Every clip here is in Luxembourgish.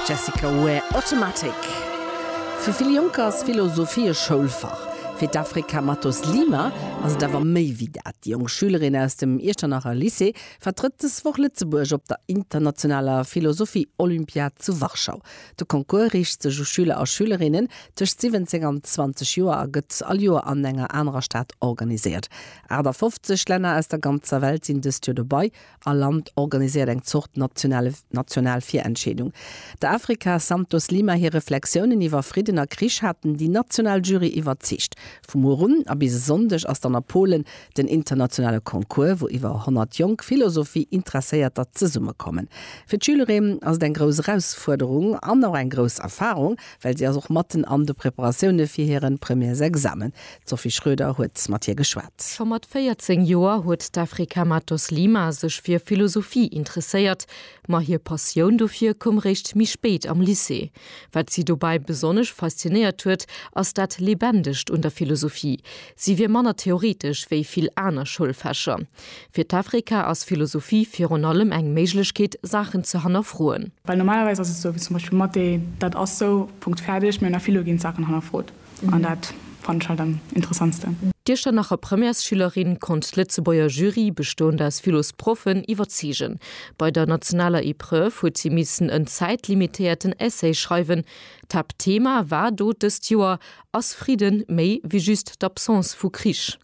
Jessica Ware, Automatic. Fir vill Jonker ass Philosophie e Schoulfach. Fir d'Afrika Matos Lima ass et awer méi wéi dat. Déi jonk Schülerin aus dem Iechternacher Lycée vertrëtt dës Woch Lëtzebuerg op der internationaler Philosophie-Olympiad zu Warschau. De Concours riicht sech u Schüler a Schülerinnen tëscht 17 an 20 Joer a gëtt all Joer an enger anerer Stad organiséiert. 58 Länner aus der ganzer Welt sinn dëst Joer dobei All Land organiséiert eng Zort nationale national Virentscheedung. Der Afrika Santos Lima hir Reflexiounen iwwer Fridden a Krich haten déi national Jury iwwerzeegt. Vu muer un a bis e Sonndeg ass dann a Polen den internationale Concours, wou iwwer 100 jonk Philosophie-Interesséierter zesummekommen. Fir d'Schülerinnen ass et eng grouss Erausfuerderung an och eng grouss Erfarung. well si ass och matten an de Preparatioune fir hire Premièresexamen. D'Sophie Schroeder huet mat hir geschwat. Scho mat 14 Joer huet d'Afrika Matos Lima sech fir Philosophie interesséiert, ma hir Passioun dofir koum réischt méi spéit am Lycée. Wat si dobäi besonnesch faszinéiert huet, ass dat Leebendegt un der Philosophie. Si wier manner theoretesch wéi vill aner Schoulfächer. Fir d'Afrika ass Philosophie virun allem eng Méiglechkeet, Saachen ze hannerfroen. Well normalerweis ass et esou, wéi zum Beispill Mathé, dat ass sou, Punkt, fäerdeg. Mee an der Philo ginn d'Saachen hannerfrot. An dat fannen ech halt am interessantsten. D'Iechternacher Premièresschülerin konnt d'Lëtzebuerger Jury, bestoend aus Philosproffen, iwwerzeegen. Bei der nationaler Epreuve huet si missen en zäitlimitéierten Essay schreiwen. D'Haaptthema war do dëst Joer, Ass Fridden méi wéi just d'Absence vu Krich?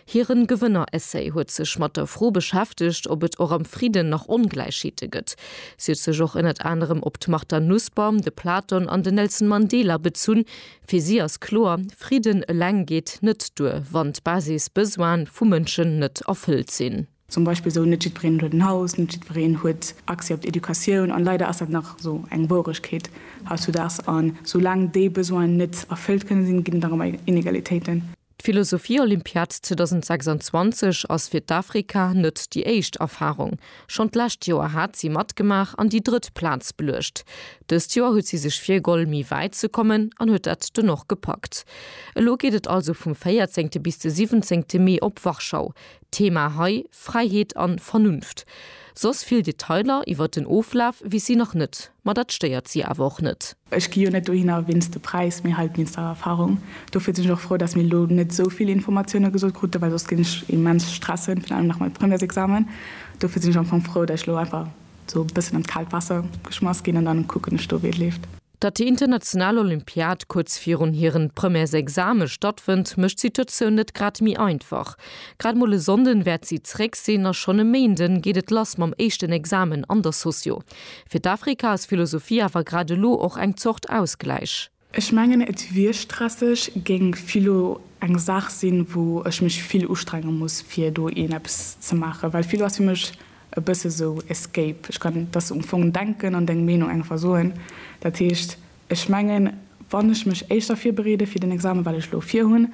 Hiren Gewënner-Essay huet sech mat der Fro beschäftegt, ob et och am Fridden nach Ongläichheete gëtt. Si huet sech och ënnert anerem op d'Martha Nussbaum, de Platon an den Nelson Mandela bezunn. Fir si ass kloer, Fridden eleng geet net duer, wann d'Basis-Besoine vu Mënschen net erfëllt sinn. Zum Beispill esou, Net jiddwereen huet en Haus, net jiddwereen huet Accès op d'Educatioun. An leider ass dat nach esou eng Wouregkeet hautzudags. An soulaang déi Besoinen net erfëllt kënne sinn, ginn et nach ëmmer Inegalitéiten. D'Philosophie-Olympiad 2026 ass fir d'Afrika net déi éischt Erfarung. Schonn d'lescht Joer hat si matgemaach an déi drëtt Plaz beluecht. Dëst Joer huet si sech virgoll méi wäit ze kommen an huet dat dunn och gepackt. Elo geet et also vum 14 bis de 17 Mee op Warschau. Thema hei, Fräiheet an Vernunft. Soss vill Detailer iwwert den Oflaf weess si nach net, ma dat stéiert si awer och net. Ech gi jo net dohinner wéinst de Präis, mee halt wéinst der Erfahrung. Dofir sinn ech och frou, dass mir elo net esou vill Informatioune gesot kruten, well soss géing ech mech immens stressen, virun allem nach mam Premièresexamen. Dofir sinn ech am Fong frou, dass ech elo einfach esou e bëssen an d'kaalt Waasser geschmass ginn an dann kucken ech do, wéi et leeft. Datt déi international Olympiad kuerz virun hiren Premièresexame stattfënnt, mécht d'Situatioun net grad méi einfach. Grad mol e Sonnden wäert si zeréck sinn a schonn e Méinden geet et lass mam éischten Examen an der Socio. Fir d'Afrika ass Philosophie awer grad elo och eng Zort Ausgläich. Ech mengen et wier stresseg, géing Philo eng Saach sinn, wou ech mech vill ustrenge muss fir do een eppes ze maachen, well Philo ass fir mech e bësse esou Escape, ech kann dass um Fong denken an deng Meenung einfach soen. Dat heescht, ech mengen, wann ech mech éischter virbereede fir den Examen, wat ech elo virhunn,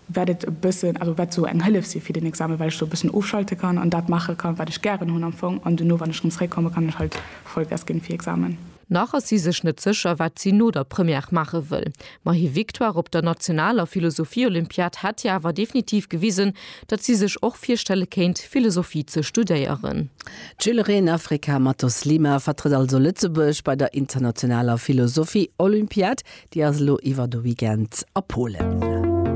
wäert et e bëssen, also wäert esou eng Hëllef si fir den Examen, well ech do e bëssen ofschalte kann an dat maache kann, wat ech gären hunn am Fong an duerno, wann ech rëm zréckkomme, kann ech halt Vollgas ginn fir Examen. Nach ass si sech net sécher, wat si no der Première maache wëll. Ma hir Victoire op der nationaler Philosophie-Olympiad hätt hir awer definitiv gewisen, datt si sech och virstelle kéint, Philosophie ze studéieren. D'Schülerin Afrika Matos Lima vertrëtt also Lëtzebuerg bei der internationaler Philosophie-Olympiad. Déi ass elo iwwer de Weekend a Polen.